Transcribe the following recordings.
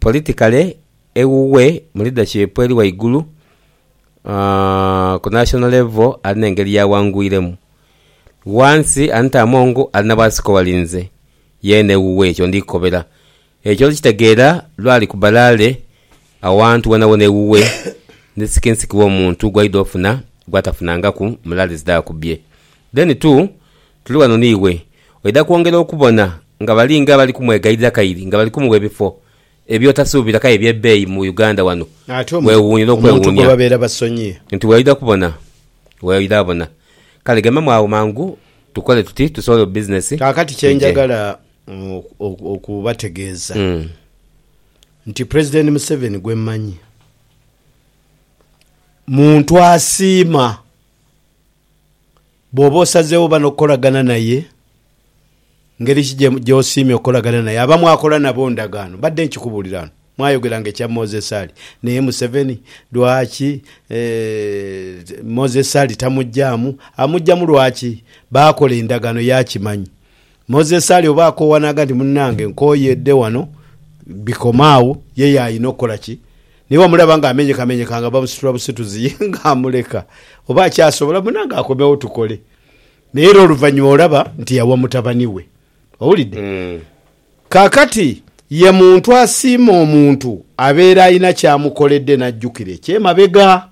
Politikale ewuwe mu leadership eri waigulu ku national level ali nengeri yawangwiremu. Wansi Anita Among ali na bwasika owali nze yeena ewuwe ekyo ndi kukobera. Ekyo olikitegeera lwa ali ku balaale awantu wonawona ewuwe ni sikinsiki w'omuntu gwaidha ofuna gwatafunangaku mu laale zidha ku bye. Then too Tuli ghano n'iwe. Oidha kwongera okubona nga bali nga abali kumwegayirira kairi nga bali kumuwa ebifo eby'otasuubira k'aye eby'ebbeeyi mu Uganda wano. Weewuunire okwewuunia nti weoidha kubona weoidha bona. Kale gemamu agho mangu tukole tuti tusobole bu bizinesi bwije. Kaakati kye njagala okubategeeza nti Pulezidenti Museveni gwe mmanyi muntu asiima Bw'oba osazeewo oba n'okukolagana naye, ngeri ki gy'osiimye okukolagana naye? Abo bamwakola nabo ndagaano? Mbadde nkikubuulira ghano, mwayogeranga ekya Moses Ali naye Museveni lwaki Moses Ali tamugyamu? Amugyamu lwaki? Baakola endagaano ye akimanyi. Moses ali oba akoowa naaga nti, Munnange nkooyedde wano bikoma agho. Ye yaalina okukola ki? Ni bwamulaba ng'amenyekamenyeka nga bamusitula busituzi ye ng'amuleka? Oba akyasobola munnange akomewo tukole. Naye era oluvannyuma olaba nti yawa mutabani we. Owulidde? Kaakati, ye muntu asiima omuntu abeera alina ky'amukoledde n'ajjukira eky'emabega.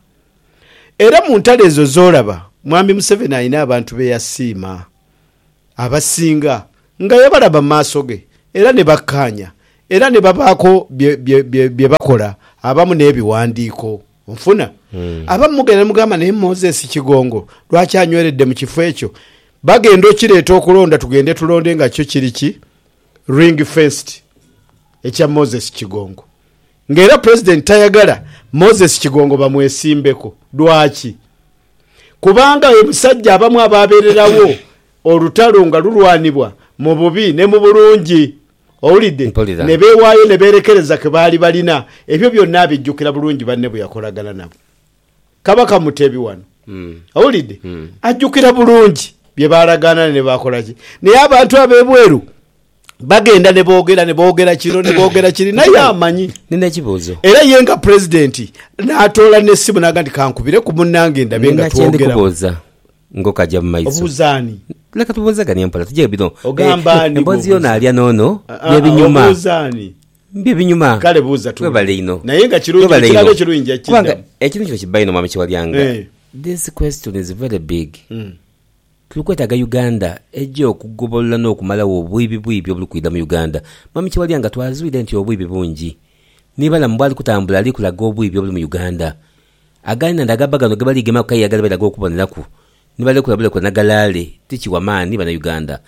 Era mu ntalo ezo z'olaba, Mwami Museveni alina abantu be yasiima. Abasinga nga yabalaba mu maaso ge, era ni bakkaanya, era ni babaako bye, bye, bye, bye bakola abamu n'ebiwandiiko. Onfuna? Abamu mugenda ni mugamba, Naye Moses Kigongo, lwaki anyweredde mu kifo ekyo? Bagenda okireeta okulonda tugende tulonde nga kyo kiri ki ring-fenced ekya Moses Kigongo. Nga era Pulezidenti tayagala Moses Kigongo bamwesimbeko. Lwaki? Kubanga ye musajja abamu aba abeererawo olutalo nga lulwanibwa mu bubi ne mu bulungi. Owulidde? Mpulira. Ne beewaayo ne beerekereza ke baali balina. Ebyo byonna abijjukira bulungi banne bwe yakolagana nabo. Kabaka Mutebi wano, owulidde, ajjukira bulungi bye baalagaana ne baakola ki. Naye abantu ab'ebweru bagenda ne boogera, ne boogera kino, ne boogera kiri, naye Kale, amanyi. nina ekibuuzo. Era ye nga Pulezidenti n'atoola n'essimu n'agamba nti kankubireku munnange ndabe nga Nina kye ndi twogeraku. kubuuza ng'okaja mu maiso. Obuuza ani? Leka tubuuzeganie mpola, tugye bino. Ogamba Eh, ani Emboozi y'ono gw'obuuza? alya n'ono, Ah, ah, bye binyuma. Obuuza ani? Bye binyuma. Kale buuza tuwulire. Webale inho. Naye nga kirungi Webale ekirala inho. ekirungi nja Kubanga kukiddamu. ekintu kino kibba inho Mwami Kiwalyanga. Eh. This question is very big. Mm. Tuli kwetaaga Uganda eje okugobolola n'okumalawo obwibi bwibi obuli kwidha mu Uganda. Mwami Kiwalyanga twazwire nti obwibi bungi. Ni Balamu bwali kutambula ali kulaga obwibi obuli mu Uganda. Againanda agabba ghano ge bali gemaku aye agaliba ghano okuboneraku ni balekula bulekule na galaale ti kiwa maani Banauganda.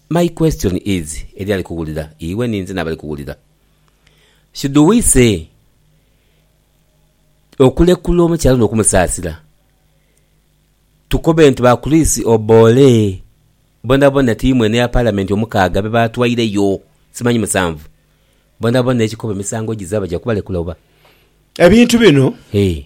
My question is eli ali kuwulira iwe ni nze n'abali kuwulira, should we say okulekula omukyala ono okumusaasira tukobe nti ba Chris Oboole bonabona tiimu eno eya Palamenti omukaaga be baatwaireyo, simanyi musanvu, bonabona ekikobe emisango gizabe baja kubalekula oba? Ebintu bino. Hee.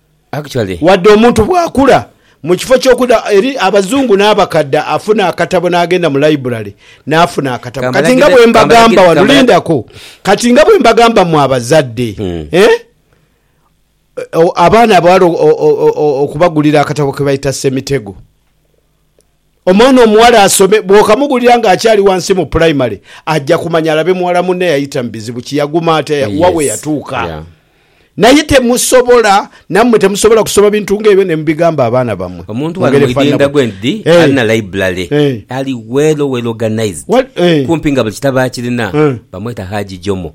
Wadde omuntu bw'akula, mu kifo ky'okuda eri abazungu n'abakadda afuna akatabo n'agenda mu laibulale n'afuna akatabo. Kati nga bwe mbagamba wano, lindako, kati nga bwe mbagamba mmwe abazadde, eh, abaana abawala okubagulira akatabo ke bayita Ssemitego. Omwana omuwala asome, bw'okamugulira ng'akyali wansi mu pulayimale, aja kumanya alabe muwala munne eyayita mu bizibu ki, yaguma atya, ya, wa we Yes. yatuuka. Yeah. Naye temusobola, nammwe temusobola kusoma bintu ng'ebyo ne mubigamba abaana bammwe. Omuntu Mu wano ngeri mu efaanana idinda bwe- gwendi Eh. alina library Eh. ali well well organized Wal- eh. kumpi nga buli kitabo akirina Eh. bamweta Haji Jomo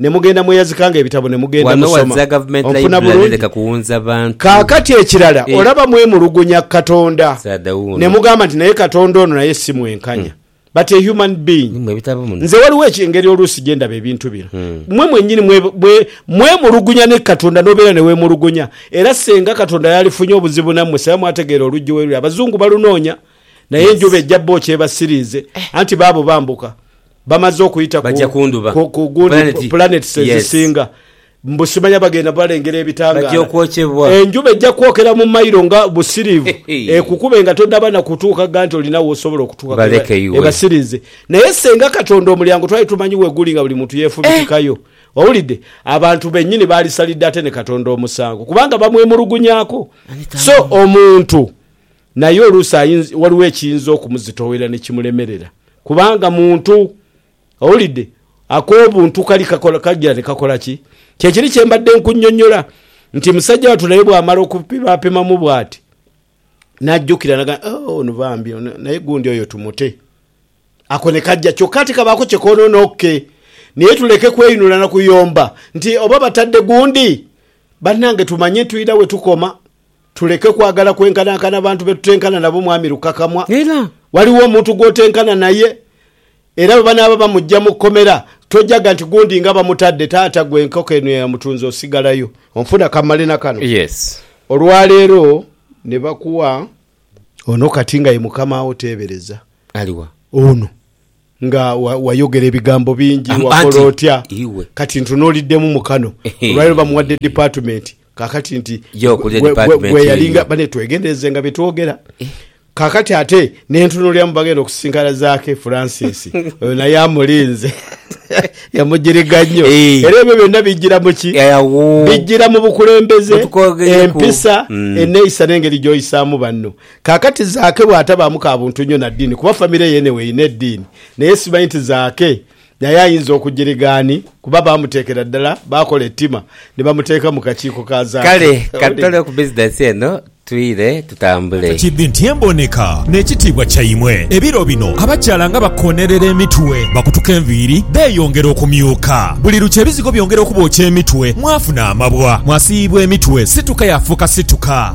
Ne mugenda mweyazikanga ebitabo ne mugenda Wano musoma. waza Government Onfuna Library bulungi? leka kuwunza bantu. Kaakati ekirala, Eh. olaba mwemulugunya ku Katonda Saada wuuno. ne mugamba nti naye Katonda ono naye si mwenkanya. But a human being. Ni mwe ebitabo muno. Nze waliwo eki- engeri oluusi gye ndaba ebintu bino. Mmwe mwennyini mwe- mwe- mwemulugunya ne Katonda n'obeera ne weemulugunya. Era ssenga Katonda yalifunye obuzibu nammwe singa mwategeera oluggi we luli. Abazungu balunoonya naye enjuba ejja bo kyebasiriize anti baabo bambuka. Bamaze okuyita ku pulaneti ezisinga, mbu simanya bagenda balengera ebitangaala. Enjuba ejja kwokera mu mailo nga busiriivu ekukube nga tonnaba na kutuuka gha nti olina w'osobola okutuuka ebasiriize. Naye ssenga Katonda omulyango twali tumanyi we guli nga buli muntu yeefubitikayo. Owulidde? Abantu bennyini baalisalidde ate ne Katonda omusango kubanga bamwemulugunyaako. So omuntu Naye oluusi ayinza, waliwo ekiyinza okumuzitoowerera ni kimulemerera, kubanga muntu. Owulidde? Ak'obuntu kali kakola, kagira ni kakola ki? Kye kiri kye mbadde nkunnyonnyola nti, musajja wattu naye bw'amala okupimaapimamu bw'ati, n'ajjukira n'agamba, Oh, ono bambi, ono, naye gundi oyo tumute. Ako ne kajja, kyokka ate kabaako kye koonoona. OK. Naye tuleke kweyinula na kuyomba nti, Oba batadde gundi! Bannange, tumanye tulina we tukoma. Tuleke kwagala kwenkanankana bantu be tutenkana nabo, Mwami Lukakamwa. Era waliwo omuntu gw'otenkana naye, era bwe banaaba bamuggya mu kkomera, tojaga nti gundi nga bamutadde, taata ggwe enkoko eno eyamutunze osigalayo. Onfuna? Ka mmale na kano. Yes. Olwa leero ne bakuwa ono kati nga ye mukama wo, teebereza. Ali wa? Ono. Nga wayogera ebigambo bingi, wakola otya, kati ntunuuliddemu mu kano. Olwaleero bamuwadde dipatimenti kaakati nti gwe yalinga bane. Twegenderezenga bye twogera. Kaakati ate ne ntunuulira mu bagenda okusisinkana Zaake Francis. Oyo naye amulinze. Yamugiriga nnyo. Era ebyo byonna bijjira mu ki? Bijjira mu bukulembeze, empisa, enneeyisa n'engeri gy'oyisaamu banno. Kaakati Zaake bw'atabaamu ka buntu nnyo na ddiini, kuba famire ye enegho erina eddiini, naye simanyi nti Zaake naye ayinza okugiriga ani, kuba baamuteekera ddala, baakola ettima ni bamuteeka mu kakiiko ka Zaake. Kale ka tutole ku bizinensi eno twire tutambule. Kidhi nti emboneka n'ekitiibwa kyaimwe. Ebiro bino abakyala nga bakoonerera emitwe, bakutuka enviiri, beeyongera okumyuka. Buli lukya ebizigo byongera okubookya emitwe, mwafuna amabwa, mwasiiyibwa emitwe, situka yaafuuka situka.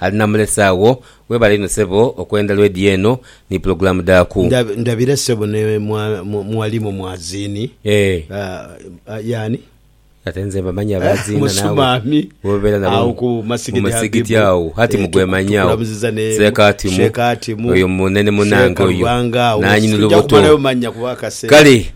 Ali namulese agho. Webale inho sebo okwenda lwedi eno ni pulogulamu dhaku. Ndabira sebo ne mwalimu mwazini yani? Ate nze mbamanyi abaziina naawe bwobeera nabo mu musigiti agho hati mugwemanyawo seeka atimu oyo munene munange oyo nanyini lubuto kale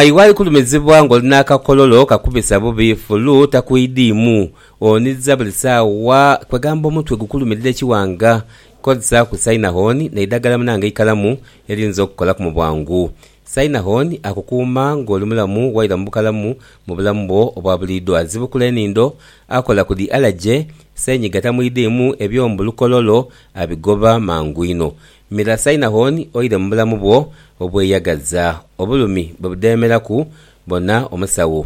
iwe ali kulumizibwa nga oli nakakololo kakubisa bubi fulu takwidhiimu Oniza buli sawa kwegamba omutwe gukulumirira ekiwanga kozesa ku Synahon neidagala munange eikalamu eliyinza okukolaku mu bwangu. Synahon akukuuma nga oli mulamu waira mu bukalamu mu bulamu bwo obwa buliidho. Azibukula enindho, akola ku dhi alaje, senyiga tamwidhiimu ebyo mbu lukololo abigoba mangu inho. Mira Synahon oire mu bulamu bwo obweyagaza. Obulumi bwe budheemeraku bona omusawo.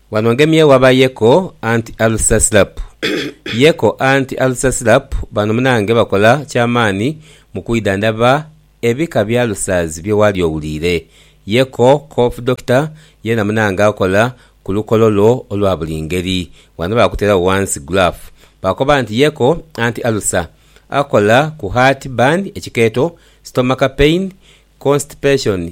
Wano ngemye waba Yeko anti Alsasrap. Yeko anti Alsasrap bano munange bakola kyamaani mu kwidhandhaba ebika bya Alsers bye waali owuliire. Yeko Cough Doctor yeena munange akola ku lukolo lwo olwa buli ngeri. Wano baakuteeragho ghansi graph baakoba nti Yeko anti Alsa akola ku heart burn, ekikeeto, stomach pain, constipation,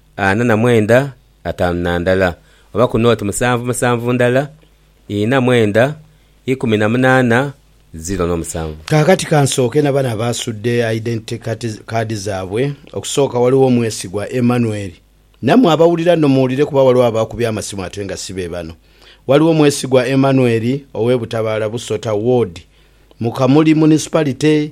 ana na mwenda ataanu na ndala, oba ku nooti musanvu musanvu ndala, ina mwenda ikumi na munaana ziro n'omusanvu. Kaakati ka nsooke na bano abaasudde Identity Card zaabwe. Okusooka waliwo omwesigwa Emmanuel. Nammwe abawulira nno muwulire kuba waliwo abaakubye amasimu ate nga si be bano. Waliwo Mwesigwa Emmanuel ow'e Butabaala Busota Ward mu Kamuli Municipality.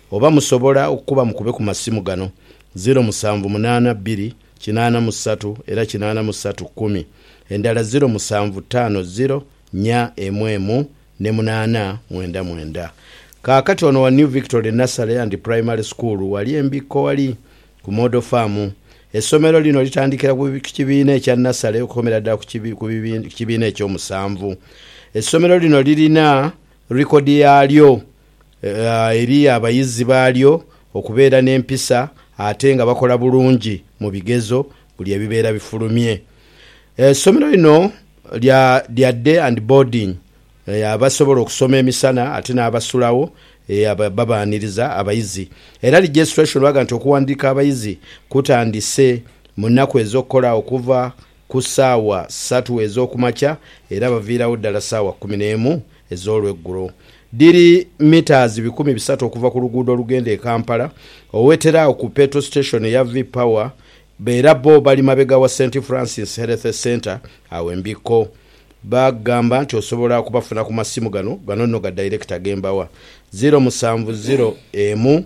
Oba musobola okukuba mukube ku masimu gano, ziro musanvu munaana bbiri kinaana mu satu era kinaana mu satu kkumi, endala ziro musanvu ttaano ziro nnya emu emu ne munaana mwenda mwenda. Kaakati ono wa New Victory Nursery and Primary School wali e Mbikkowali ku Model Farm. Essomero lino litandikira ku kibiina ekya Nasale okukomera ddala ku kibiina eky'omusanvu. Essomero lino lirina likodi yaalyo. eri abayizi baalyo okubeera n'empisa ate nga bakola bulungi mu bigezo buli ebibeera bifulumye. Esomero lino lya lya day and boarding abasobola okusoma emisana ate n'abasulagho babaaniriza abayizi. Era registration baga nti okuwandiika abayizi kutandise mu nnaku ez'okukola okuva ku saawa satu ez'okumakya era baviiragho ddala saawa kumi n'emu ez'olweggulo. Dhiri mitaazi bikumi bisatu okuva ku luguudo olugenda e Kampala, owetera agho ku Petro Station eya V-Power era bo bali mabega wa St Francis Health Centre agho e Mbikko. Bagamba nti osobola okubafuna ku masimu gano, gano nno ga director ge mbawa, ziro musanvu ziro emu,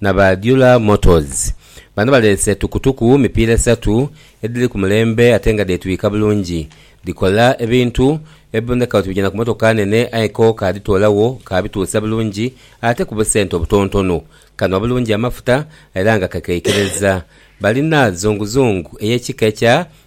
na ba Dula Motors. Bano baleese tukutuku mipiira esatu edhiri ku mulembe ate nga dheetwika bulungi. Dhikola ebintu ebiboneka oti bigya na ku mmotoka nene aye ko kaadhitoolagho kaabituusa bulungi ate ku busente obutonotono. Kanhwa bulungi amafuta era nga kakeikereza. Balina zunguzungu ey'ekika ekya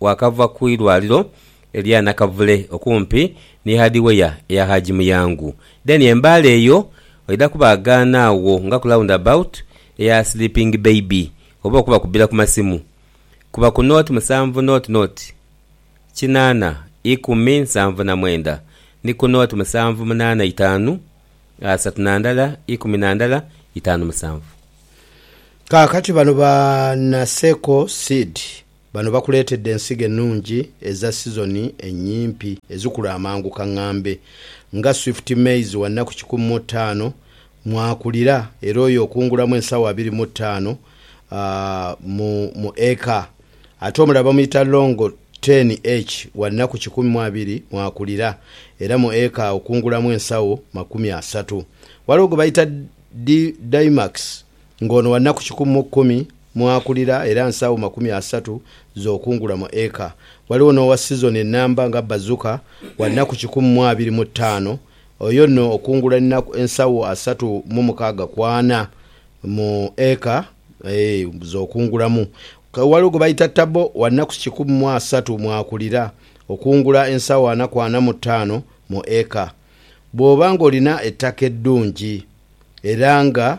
Waakava ku irwaliro erya Nakavule okumpi ni Hardware eya Haji Muyangu. Then embaale eyo oidha kubaagaana agho nga ku round about eya Sleeping Baby oba okubakubbira ku masimu. Kuba ku nought musanvu nought nought kinaana ikumi nsanvu na mwenda ni ku nought musanvu munaana itaanu asatu na ndala ikumi na ndala itaanu musanvu. Kaakati bano ba Naseko Seed. Bano bakuleetedde ensigo ennungi eza sizoni ennyimpi ezikula amangu kang'ambe nga Swift Maize wa nnaku kikumi mu ttaano mw'akulira era oyo okungulamu ensawo abiri mu ttaano mu mu eka ate omulala bamuyita Longo Ten H wa nnaku kikumi mu abiri mw'akulira era mu eka okungulamu ensawo makumi asatu. Waliwo gwe bayita Di Dymax Ng'ono wa nnaku kikumi mu kumi mw'akulira era nsaawo makumi asatu z'okungula mu eka. Ghaligho n'owa sizoni ennamba nga Bazuka, wa nnaku kikumi mu abiri mu ttaano, oyo nno okungula ennaku ensawo asatu mu mukaaga ku ana mu eka z'okungulamu. Ghaligho gwe baita Tabbo, wa nnaku kikumi mu asatu mw'akulira, okungula ensawo ana ku ana mu ttaano mu eka. Bw'oba ng'olina ettaka eddungi era nga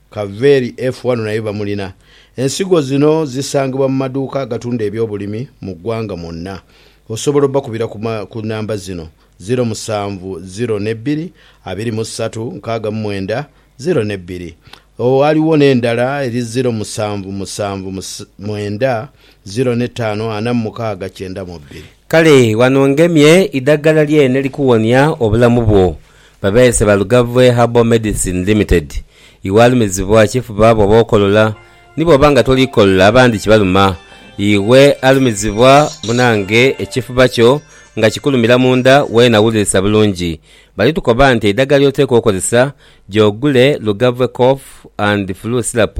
Kaveri F wano naye bamulina. Ensigo zino zisangibwa mu maduuka agatunda ebyobulimi mu ggwanga mwonna. Osobola obakubira ku ku namba zino, ziro musanvu ziro ne bbiri abiri mu ssatu nkaaga mu mwenda ziro ne bbiri. Waliwo n'endala eri ziro musanvu musanvu mwenda ziro ne ttaano ana mu mukaaga kyenda mu bbiri. Kale ghano ngemye idhaggala lyene elikuwonia obulamu bwo. Babeese ba Lugavve Herbal Medicine Limited. Iwaalumizibwa kifuba bw'oba okolola, ni bw'oba nga toli kolola abandi kibaluma. Iwe alumizibwa munange ekifuba kyo nga kikulumira mu nda weena wulirisa bulungi, bali tukoba nti eidagala ly'oteekwa okozesa gy'ogule Lugavve Cough and Flu Syrup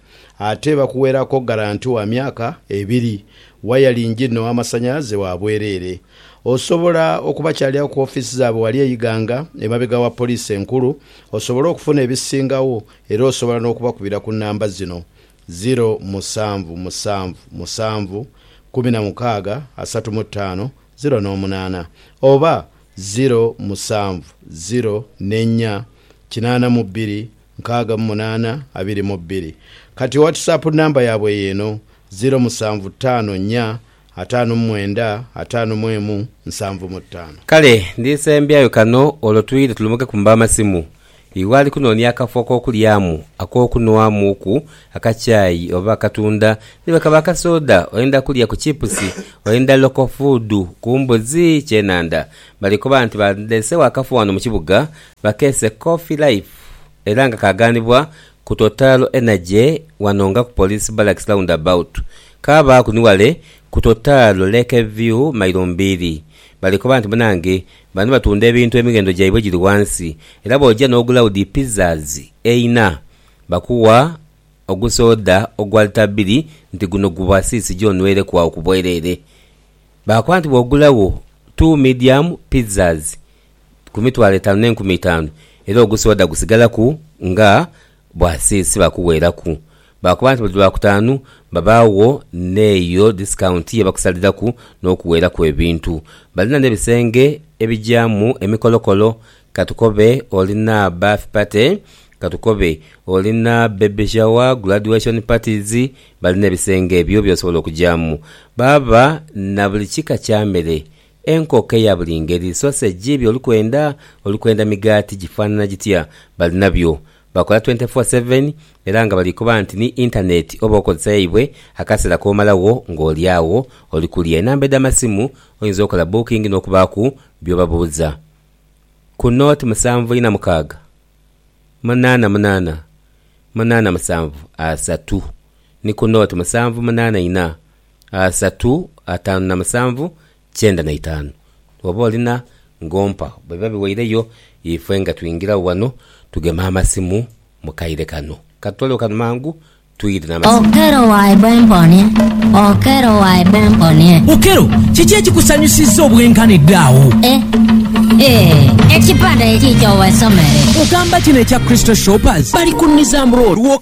ate bakuweraku garanti wa myaka ebiri, wayalingi no amasanyalaze wa bwerere. Osobola okubakyaliagho ku offiisi zaabwe wali e Iganga emabega wa Poliisi enkulu osobole okufuna ebisingagho era osobola n'okubakubira ku namba zino, ziro musanvu musanvu musanvu kumi na mukaaga asatu mu ttaano ziro n'omunaana oba ziro musanvu ziro n'ennya kinaana mu bbiri nkaaga mu munaana abiri mu bbiri. Kati owatisapu namba yaabwe y'eno, ziro musanvu ttaano nnya ataanu mu mwenda ataanu mu emu nsanvu mu ttaano. Kale ndisembyayo kano olwo twidhe tulumukeku mu b'amasimu. Iwe ali kunoonia akafo ak'okulyamu, ak'okunhwamuuku, akakyayi oba akatunda, ni bwe kaba akasooda, oyenda kulya ku chipusi, oyenda local food, ku mbuzi, kyenandha. Bali koba nti bandeesewo akafo wano mu kibuga, Bakese Coffee Life era nga kaaganibwa ku Total Energy wano nga ku Police Barracks Roundabout, kaabaaku ni wale ku Total Lake View mailo mbiri. Bali koba nti munange bano batunda ebintu emighendo gyaibwe giri wansi era bw'oja n'ogula udi pizzas eina, bakuwa ogusoda ogwa lita bbiri nti guno guba siisi gyo onweireku agho ku bwerere. Baakoba nti bw'ogulagho two medium pizzas, ku mitwalo etaanu n'enkumi itaanu, era ogusoda gusigalaku nga bwa sinsi bakuweeraku. Baakoba nti buli Lwakutaanu babaagho n'eyo disikawunti ye bakusaliraku n'okuweeraku ebintu. Balina n'ebisenge ebigyamu emikolokolo, ka tukobe olina birth party, ka tukobe olina baby shower, graduation parties, balina ebisenge ebyo by'osobola okugyamu. Baba na buli kika kya mere. Enkoko eya buli ngeri, sosegi, by'oli kwenda, oli kwenda migaati gifaanana gitya, balinabyo. Bakola twente foo seveni era nga bali koba nti ni Intaneeti oba okozesa yaibwe akaseera k'omalagho ng'oli agho oli kulya. Enamba edh'amasimu oyinza okola booking n'okubaaku by'obabuuza ku nooti musanvu ina mukaaga munaana munaana munaana musanvu asatu ni ku nooti musanvu munaana ina. asatu atanu na musanvu kyenda na itaanu. Bwoba olina ng'ompa bwebiba biweireyo ifwe nga twingiragho wano tugeme amasimu mu kaire kano. Katutolewo kano mangu twire n'amasimu. Okello waidha emponie Okello waidha emponie. Okello, kiki ekikusanyusizza obwenkanidde agho? Eh, eh, ekipande ekiikyo wesomere. Ogamba kino ekya Crystal Shoppers? Bali ku Nizam Road.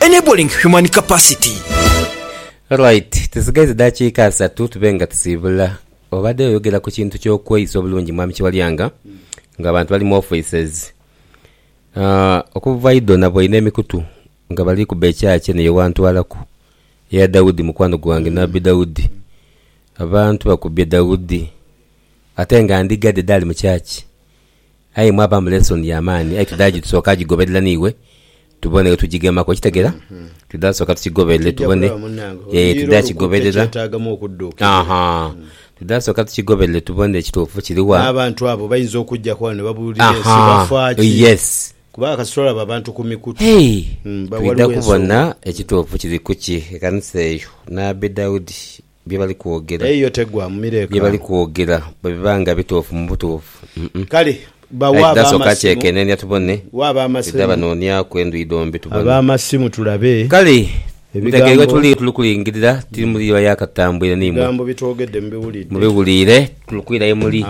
Enabling Human Capacity. Alright, tusigaiza edaakiika asatu tube nga tusiibula. Obadde oyogera ku kintu ky'okweyisa obulungi Mwami Kiwalyanga, ng'abantu bali mu offices, okuva idho naboine emikutu nga bali kuba ekyaacha eno ye wantwalaku, eya Daudi mukwano gwange, Nabbi Daudi. Abantu bakubye Daudi ate nga ndiga dhe dhaali mu church. Aye mwabamu lesson ya maani aye tudha gi tusoka gigoberera n'iwe tubone wetugigemaku okitegera tudha soka tukigoberere tubone eeh tudha kigoberera ahaa tudha soka tukigoberere tubone ekituufu kiri wa n'abantu abo bayinza okujjaku ghano nebabuulira ensi ahaa bafa ki yes kubanga kasita olaba abantu ku mikutu hey ba twidha waliwo ensonga. kubona ekituufu kiri kuki ekanisa eyo nabbi Daudi bye bali kwogera. Eyo tegwa mu mireekano. Bye bali kwogera bwe biba nga bituufu mu butuufu. Kale bawe ab'amasimu twidha banooniaku endhuyi dhombi tubone. Kale mutege ghe tuli, tuli kulingirira, tiri muli iba ya katambwire ni imwe. Mubiwulire, tuli kwira ye muli.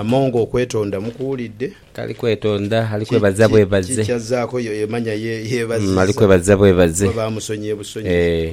Tali kwetonda, ali kwebaza bwebaze. Ali kwebaza bwebaze. Ee.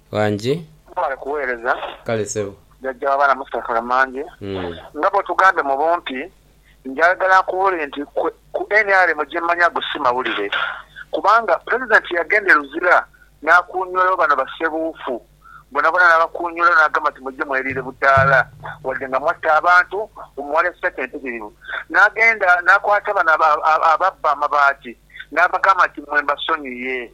Wangi. Mwebale kuweereza. Kale ssebo. Jajja w'abaana Mustafa Mange, nga bw'otugambye mu bumpi, njagala nkubuulire nti kwe ku nrm gye mmanyi ago si mawulire kubanga Pulezidenti yagenda e Luzira n'akuunywolayo bano bassebuufu bonabona n'abakuunywolayo n'agamba nti mujje mweriire budaala wadde nga mwatta abantu mbu muwalya ssente mpitirivu n'agenda n'akwata bano ababba amabaati n'abagamba nti mmwe mbasonyiye.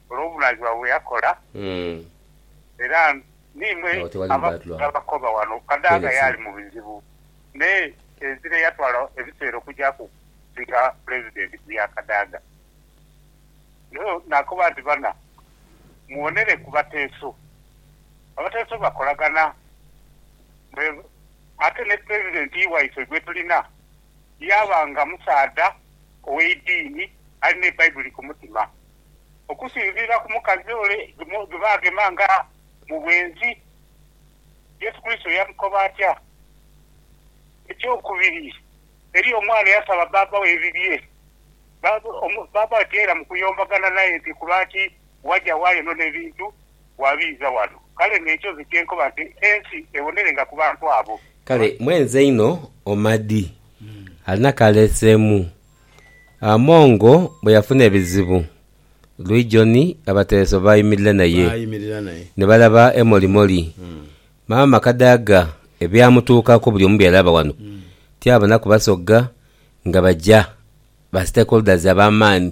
olw'obunaayizibwa bwe yakola, era n'imwe abakoba ghano kadaanga yaali mu bizibu me enzira eyatwala ebiseera okugyaku okusinga Pulezidenti ku ya kadaanga. Nio naakoba nti, Bana, muwonere ku bateeso. Abateeso bakolagana me ate ni Pulezidenti waife gwe tulina yaaba nga musaadha ow'eidiini alina Ebaibuli ku mutima. Okusinziira ku mukazi ole gwe baagema nga mu bwenzi, Yesu Kurisito yamukoba atya? Eky'okubiri, eriyo omwana eyasaba bbaabba we ebibye. Bbaabba we tiyailamu kuyombagana naye nti, 'Kulwaki waja waale no n'ebintu wabiiza wano? Kale n'ekyo nze kye nkoba nti, Ensi ebonerenga ku bantu abo. Kale mwenzi einho Omadi alina k'aleeseemu Amongo bwe yafuna ebizibu, Luijoni abatereso baayimirira naye. Ni balaba emolimoli. Maama Kadaga ebyamutuukaku buli omu byalaba wano. Tyabonaku basogga nga baja ba stakeholders ab'amaani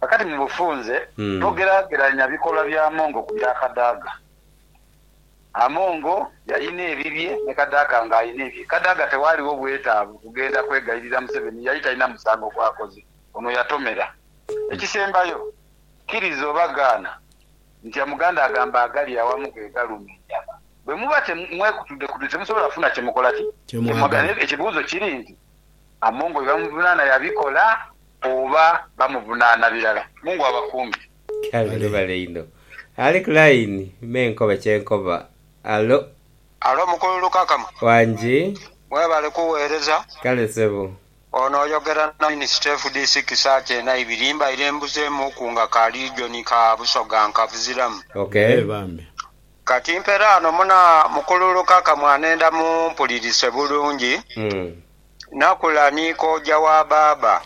Kakati mu bufunze, togeraageranya bikolwa bya Amongo ku bya Kadaga. Amongo yalina ebibye ni Kadaga ng'alina ebye. Kadaga tewaaliwo bwetaavu kugenda kwegayirira Museveni, yali talina musango gw'akoze. Ono yatomera. Ekisembayo, kkiriza oba gaana nti Omuganda agamba agali awamu ge galuma enjala. Bwe muba mwekutudekutudde temusobola kufuna kye mukola ki? Kye mwagala. Ekibuuzo kiri nti Amongo byebamuvunaana yabikola oba bamuvunaana birala? Mungu abakuume. Kale webale inho ali ku line me nkobe kyenkoba. Allo. Allo mukulu Lukakama. Wangi. Webale kuwereza. Kale sebo. Ono oyogera na Minisita FDC kisaati ena ibiri mbaire mbuzemu ku nga ka region ka Busoga nkabuziramu. Okay. Eeh bambi. Kati mperaano muna mukululuka kamwanenda mumpulirise bulungi. Nakula ni kooja wa baaba.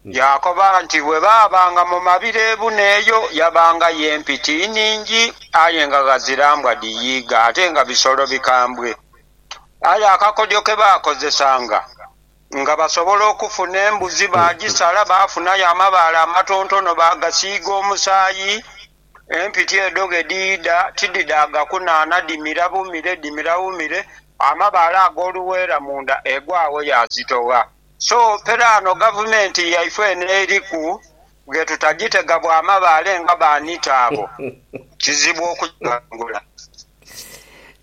Yaakoba nti bwe baabanga mu mabira ebuna eyo yabangayo empiti iningi aye nga ghazira mbwa dhiyiiga ate nga bisolo bikambwe. Aye akakodyo ke baakozesanga nga basobola okufuna embuzi baagisala baafunayo amabaale amatontono baagasiiga omusaayi Empiti edho ghe dhiidha tidhidaaga kunaana, dhimira bumire, dhimira bumire, amabaale ag'oluweera munda egwagho yaazitogha. So pera ano gavumenti yaifwe eno eriku ghe tutagitega bwa mabaale nga ba nita abo, kizibu okugighangula.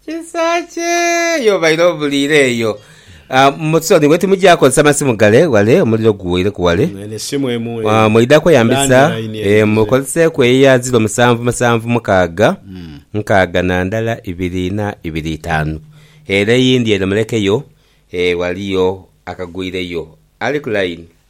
Kisaakye yo obaire obuliire eyo. Mu soni bwe timugya kozesa masimu gale ghale, omuliro guweireku ghale. Eno esimu emu eyo. Mwidha kweyambisa, mukozeseeku eyo eya ziro musanvu musanvu mukaaga nkaaga na ndala ibiri ina ibiri itaanu. Ere eyindi ere mulekeyo, ghaliyo akagwireyo. Ali ku layini.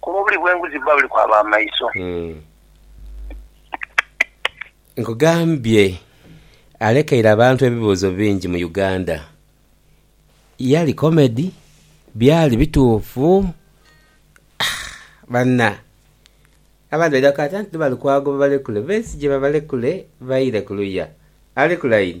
Kuba obuli bw'enguzi buba buli kwa b'amaiso. Nkugambye alekeire abantu ebibuuzo bingi mu Uganda. Yali comedy? Byali bituufu? Aah banna! Abandi baidha kukaata nti tibali kwago babalekule. Besigye babalekule baire ku luya. Ali ku line?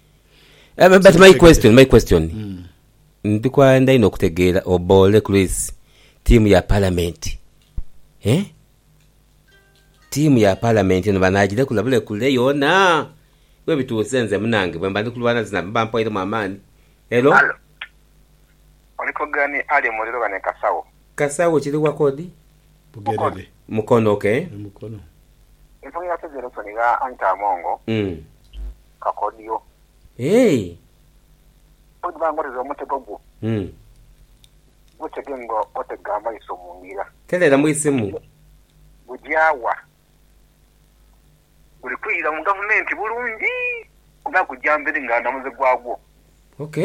But my question, my question. Mm. Ndi kwenda inho okutegeera Oboole Chris tiimu ya Palamenti. Eh? Tiimu ya Palamenti eno banaagilekula bulekule yoona? Webituuse nze munange bwemba ndi kulwana zina mba mpoiremu amaani. Hello? Hello? Oli kwogerani Ali muliro oba ni Kasawo? Kasawo kiri wa kodi? Bugerere. Mukono, ok. E Mukono. Enkono ya Federation eya Anita Amongo, kakodyo. Eehh. Oidhi ba nga oteze omutego gwo, gutege nga otega amaiso mu ngira. Tereera mu isimu. Gugya wa? Guli kwidha mu gavumenti bulungi oba gugya mberi nga ndhamuzi gwagwo? Ok.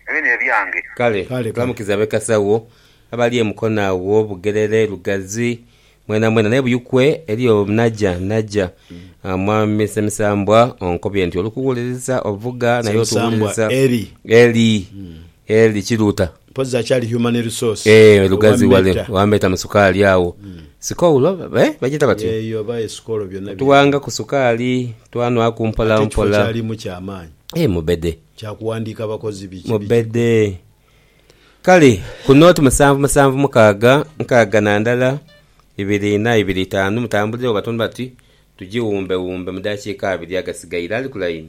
Ebyo n'ebyange. Kale tulamukize ab'ekasagho abali e Mukono agho, Bugerere, Lugazi, mwenamwena. Naye Buyikwe eliyo Naja, Naja. Mwami Ssemisambwa onkobye nti oli kuwuliriza ovuga naye otuwuliriza. Ssemisambwa Eli. Eli. Eli Kiruuta. Mpozi akyali human resource. Eeh lugazi wale wambeta mu sukaali agho sikoulo eeh bagyeta batyo? Eyo oba esikolo byona biri. Tuwanga ku sukaali twanwaku mpola mpola. Ate ekifo kyalimu kya maanyi. Eeh mubede. Kya kuwandiika bakozi biki biki. Mubede. Kale ku note musanvu musanvu mukaaga nkaaga na ndala ibiri inha ibiri itaanu mutambulire wo batundu bati tugiwumbewumbe mu dakiika abiri agasigaire. Ali ku layini?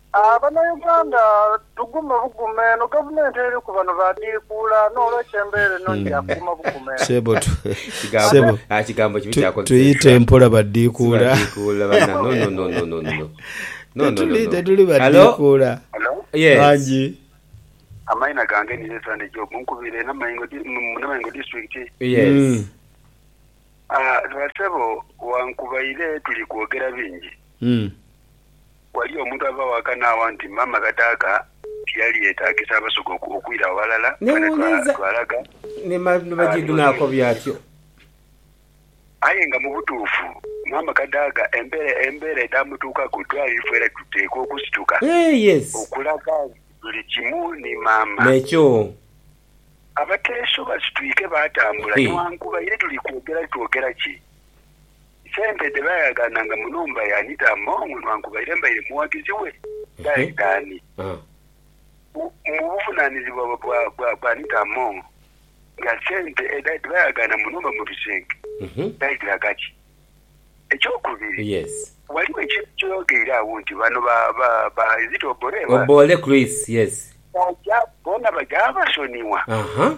Banauganda tugume bugume eno gavumenti eri ku bano badhiikuula n'olwekyo embeera eno nti ya kuguma bugume. Sebo tu, sebo tu, tuyite mpola badhiikuula. Tetuli, tetuli badhiikuula. Bangi. Amaina gange nize Sande Job nkubire Namaingo Namaingo district. Basebo wankubaire tuli kwogera bingi. Ghali omuntu ava ghaka n'agha nti, Maama kadaaka tiyali yeetaagisa Abasoga okwira ghalala, kale twalaga n'omulimu. Aye nga mu butuufu maama Kadaga embeera edhaamutuukaku dhwali ife era tuteekwa okusituka okulaga nti tuli kimu ni maama. Abateeso basitwike baatambula newankubadhe tuli kwogera twogera ki. Sente dhe baayagaananga mu nhumba ya Anita Among nwankubaire mbaire mughagizi we, dhaali dhaani? Mu buvunaanizibwa bwa bwa Anita Among, nga sente edho dhe baayagaana mu nhumba mu bisenge dhaali dhiraga ki? Ekyokubiri, ghaligho ekintu kye yogeire agho nti bano ba, ba, ba, is it Obore? Ba, Obore Chris, yes. baja, bona baja basonigha. Aha.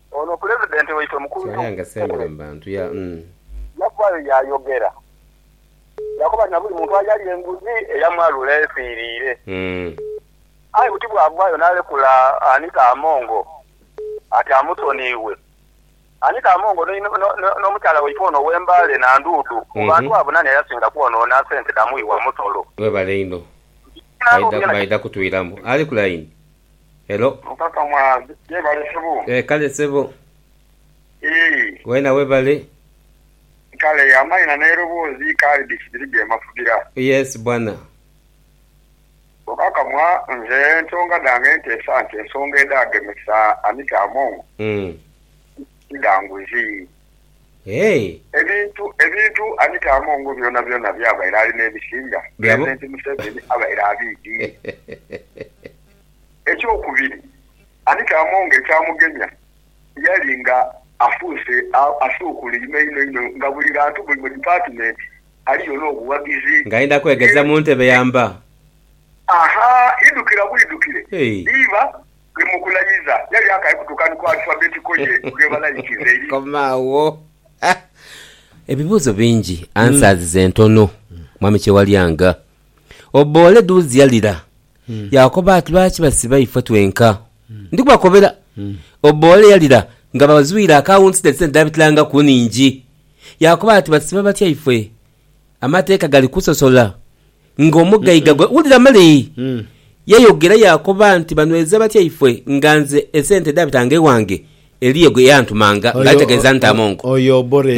Ono Pulezidenti waitwe mukulu Kyaaya nga sembere mu bantu ya uhmm. Yavaayo yaayogera yaakoba nti na buli muntu ayalya enguzi eyamwalula efiiriire. Aye buti bwavaayo naalekula Anita Amongo ati amusoniiwe. Anita Amongo ni n'omukyala waitwe ono ow'e Mbale Nanduudu mu bantu abo nani ayasinga kwonoona sente dha mughi wa musolo? Webale inho. Baidha kutwiramu. Ali ku layini. Hello. Mukaka mwa yebale sebo. Eeh kale sebo. Eeh. Wena webale. Kale amaina neroboozi kaali bikibiri byemafugira. Yes bwana. Mukaka mwa nze ensonga dhange nteesa nti ensonga edhagemesa Anita Among ti dha nguzi. Ebintu ebintu Anita Among byona byona byabaire ali nebisinga, Pulezidenti Museveni abaire abiidhi. Ekyokubiri, ani kaamonga ekyamugemya? Yali nga afuuse asuukulwa inho inho inho nga buli ghantu, buli mu dipatimenti aliyo n'obughagizi. Nga ayenda kwegeza mu ntebe ya mba. Aha, idhukira bwidhukire, iba ni mu kulayiza. Yali akali kutuuka ni ku alifabeti ko ye gwebalayikiza eri. Koma agho. Ha! Ebibuuzo bingi, answers ze ntono. Mwami Kyewalyanga, obboole duuzia lira. Yaakoba ati, Lwaki basiba ifwe twenka? Ndi kubakobera, oboole yalira nga bazwire akawunti ne sente dh'abitilangaku nnhingi. Yaakoba ati, Basiba batya ifwe? Amateeka gali kusosola ng'omugaiga gwe. Wulira male! Yayogera yaakoba nti, Banweza batya ifwe nga nze esente dhaabitanga ewange? Eliyo gwe yantumanga ng'ategeeza nti amongo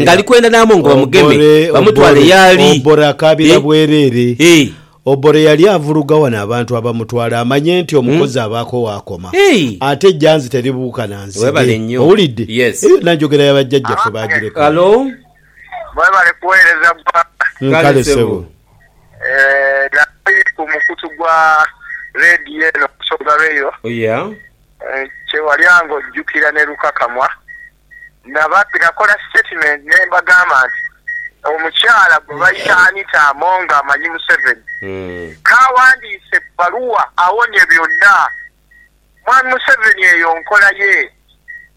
ngali kwenda n'amongo bamugeme bamutwale y'ali. Obore akaabira bwereere. Obore yali avuluga wano abantu abamutwala amanye nti omukozi abaako waakoma. Ate ejjanzi teribuuka na nzige. Owulidde? Eyo yonna njogera ya bajjajjaffe baagirekawo. Mwebale kuweereza Ggwanga. Kale ssebo. Nali ku mukutu gwa leediyo eno Busoga Rail. Kyewalya ng'ojjukira ne Lukakamwa nakola sitetimenti ne mbagamba nti omukyala gwe bayita Anita Among amanyi Museveni k'awandiise ebbaluwa awonye byonna. Mwami Museveni eyo nkola ye.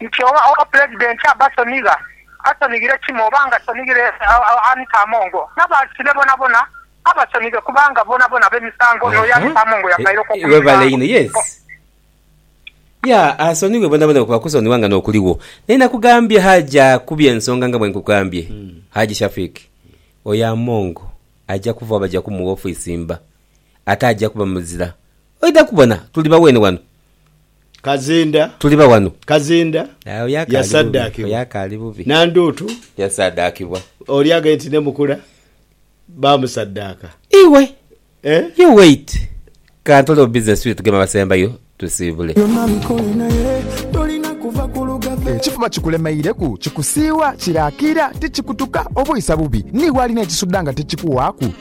nti oba oba Pulezidenti abasonigha, asonighire Kimo oba nga asonighire Anita Amongo, n'abasibe bonabona abasonighe kubanga bonabona bemisango n'oyo Anita Amongo yavaireku okumisango. Yeah asonighe bonabona kuba kusonigha nga nokuligho. Naye nakugambye Haji akubye ensonga nga bwenkugambye Haji Shafik oyo Amongo aja kuvagho baja kumugha ofisi mba ate aja kuba muzira. Oidha kubona tuli baweene wano Kazinda Tuli ba wano. Kazinda Aye oyo akaali bubi. Oyo yasaddaakibwa. akaali bubi. Nanduutu Yasaaddaakibwa. oli aghaire nti ne Mukula baamusaddaaka. Iwe! Eh? You wait! Ka ntolewo business tube tugeme abasembayo tusiibule. Byonna bikole naye tolina kuva ku lugave. Ekifuma kikulemeireku, kikusiiwa, kiraakira, tikikutuka, oba oisa bubi. Ni walina ekisudha nga tikikuwaaku?